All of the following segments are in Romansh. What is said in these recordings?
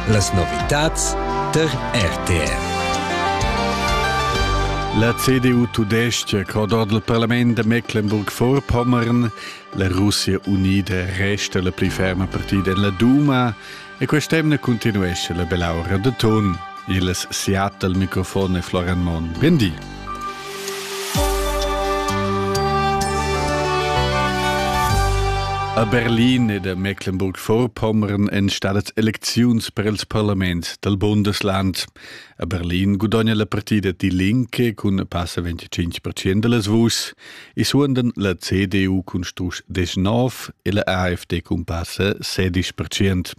Las novitads tar RTR. La CDU tudestga crod ord il parlament da Mecklenburg-Vorpommern, la Russia unida resta la pli ferma partida en la Duma e quest'emna continuesce la belaura de ton. Il Seattle mikrofon è Florian Monn. Bendi. A Berlin ed a Mecklenburg-Vorpommern èn stadas elecziuns per il parlament dal Bundesland. A Berlin gudogna la partida Die Linke cun passa 25 percent da las vuschs e suondan la CDU cun strusch 19 e la AfD cun passa 16 percent.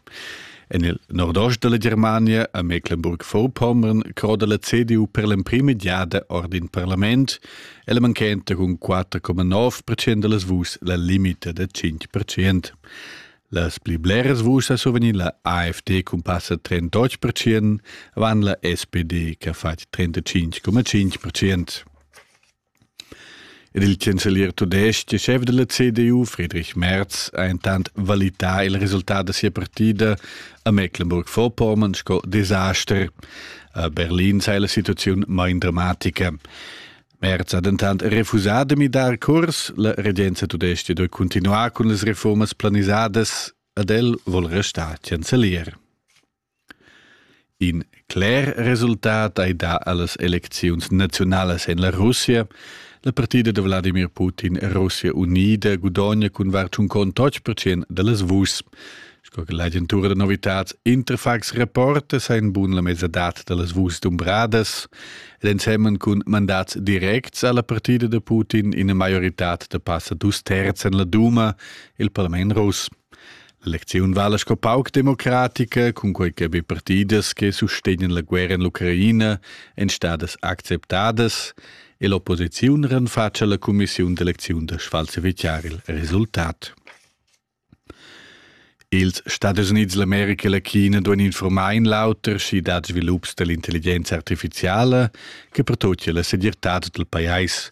En il nordost della Germania a Mecklenburg-Vorpommern croda la CDU per l'emprima giada ord in parlament e la manchenta cun 4,9% de las vus la limita da 5%. Las pli bleras vus a survegnir la AfD cun passa 38%, van la SPD che ha fatg 35,5%. Ed il chancelier tudestg e schef della CDU, Friedrich Merz, ha intant valità il resultat da sia partida a Mecklenburg-Vorpommern sco desaster. A Berlin sei la situaziun main dramatica. Merz ha dentant refusà de midar curs. La regenza tudestga doi continuar cun las reformas planisadas, ad el vol restar chancelier. In cler resultat ei dà allas elecziuns naziunalas en la Russia. La partida da Wladimir Putin Russia unida gudogna cun var tschun contotg percent dallas vuschs. Sco che l'agentura da novitads Interfax reporta, sa in bun la mesadad dallas vuschs dumbradas. Ed ensemen cun mandats directs alla partida da Putin ina maioritad da passa dus terzs en la Duma, il parlament russ. Lecziun vala sco pauc democratica, cunquei che be partidas che sustegnan la guerra en l'Ucraina ein stadas acceptadas e l'opposiziun renfatscha la cumissiun d'elecziun da sfalsificar il resultat. Ils Stadis Unids, l'America e la China duan informar in l'auter schi dad svilups dall'intelligenza artificiala che pertochia la segirtad dal pajais,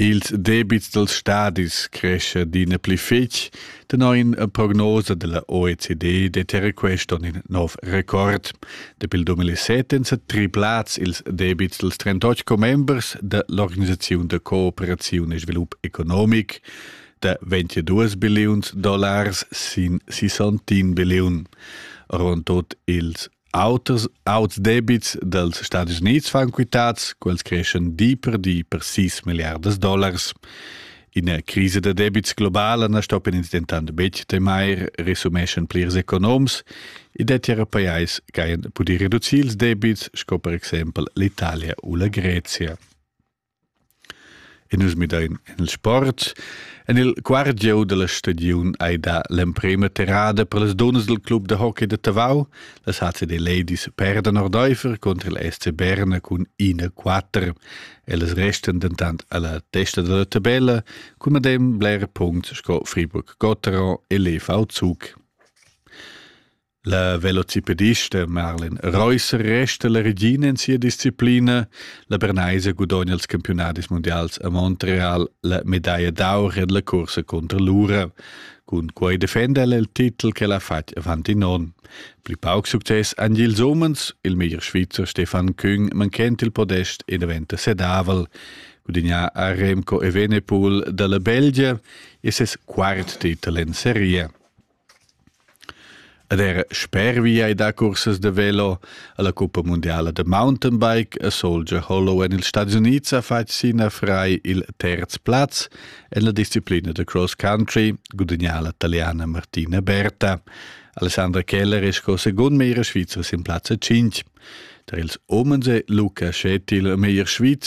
Ils debits dals stadis crescha adina pli fetg. Tenor ina prognosa da la OECD dettia quest onn in nov record. Dapi il 2007 èn sa triplads ils debits dals 38 commembers da l'organisaziun da cooperaziun e svilup economic da 22 billiuns dollars sin 61 billiun. Ron tut ils Auters auts debits dals Stadis Unids fan quitads, quels creschan di per di per 6 milliardas dollars. Ina crisa da debits globala na stoppan ins dentant betg temair, resumeschan plirs economs. I dettia er pajais che hajan pudì reducir ils debits, sco per exempel l'Italia u la Grezia. E nus midain en il sport. En il quart gieu da la stagiun hai dà l'emprima terrada per las dunnas dal club da hockey da Tavau. Las HCD Ladies perdan ordaifer contro il SC Berna cun 1-4. Ellas restan dentant alla testa della tabella cun medem bler punts sco Friburg Gotteron e Lev Zug. La velocipedista Marlen Reusser resta la regina in sia disciplina. La Bernaisa gudogna els campiunadis mundials a Montreal la medaglia d'aur en la cursa contro l'ura. Cun quei defenda el il titel che l'ha fatg avant in onn. Pli pauc success han ils umens. Il meglier Svizzer Stefan Küng manchent il podest e diventa sedavel. Gudignà a Remco Evenepoel dalla Belgia e ses quart titel en serie. Ed era spervi ei da cursas da velo alla cuppa mundiala da mountainbike a Soldier Hollow en ils Stadis Unids ha fatg sina frei il terz plaz en la disciplina da cross country, gudagnà la taliana Martina Berta. Alessandra Keller è sco secund meglier svizzer sin plazza 5. Der ils Omens è Luca Schettil meglier svizzer